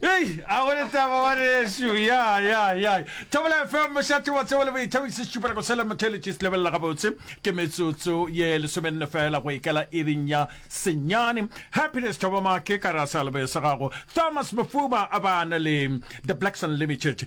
Hey, a go letaba wa rešu ya ya ya thabela fm mošate wa tsebo le boithabise šupela go sela motheletše se lebelela gabotse ke metsotso ye lesomenne fela go ikela iring ya senyane happiness thobamake ka rasa lebese gago thomas mofuba a bana le the blacks unlimited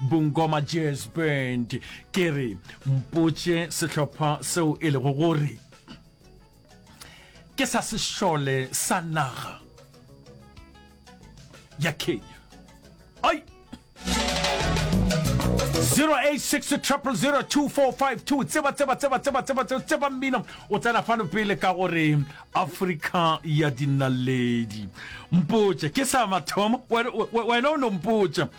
Bungoma Jazz Band ke re mpotše sehlopha seo e lego gore ke sa sešole sa naga ya Kenya ai 0860002452 tseba tseba tseba tseba tseba tseba tseba mmino o tsena fano pele ka gore afrika ya dinaledi mpotše ke sa mathomo wena o no mpotša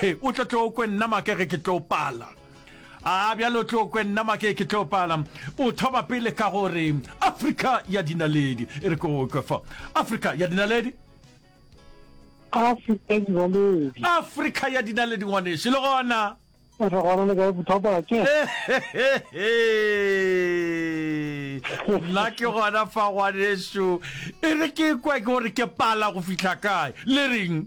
He, o tlo tlo kwe nna make ge ke tlo pala. A bjale o tlo kwe nna make ke tlo pala. O thoma pele ka gore Afrika ya dinaledi. E re ko kwe fa. Afrika ya dinaledi. Afrika ya dinaledi. Afrika ya dinaledi ngwaneši le gona. Re gona le ka e bothata ke. nna ke gona fa ngwaneso e re ke kwa ke gore ke pala go fitlha kae le reng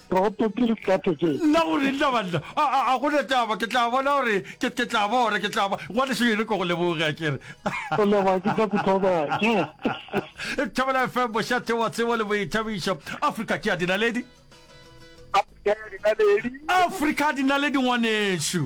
Toropo ke dikate tše. Nna go re nna banna a go na taba ke tla bona gore ke ke tla bona ke tla ba wa le shebe ko go leboge a kere go leboga ke tla kutlwa ke Thobela FM bošate wa tsebo le boithabišo Africa ke ya dinaledi Africa dinaledi ngwanešu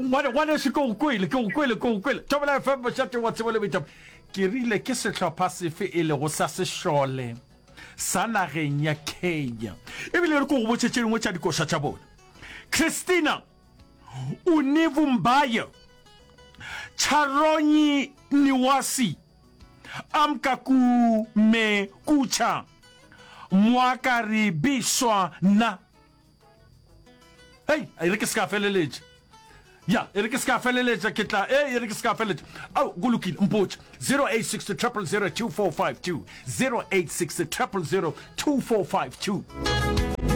Ngwane, ngwanešu, ke go kwele, ke go kwele, ke go kwele. Thobela FM, mošate wa tsebo le boithapo. Ke rile ke sehlopha sefe e lego sa sešole sa nageng ya Kenya? Ebile re ko go botše tše dingwe tša dikoša tša bona. Christina Univumbaye, Charonyi Niwasi, Amkaku Me Kucha, Mwakari Biswa Na. hei a e re ke se ka feleletša ya e re ke se ka feleletša ke tla e e re ke se ka feleletša ao go lokile mpotše 086 0002452 086 0002452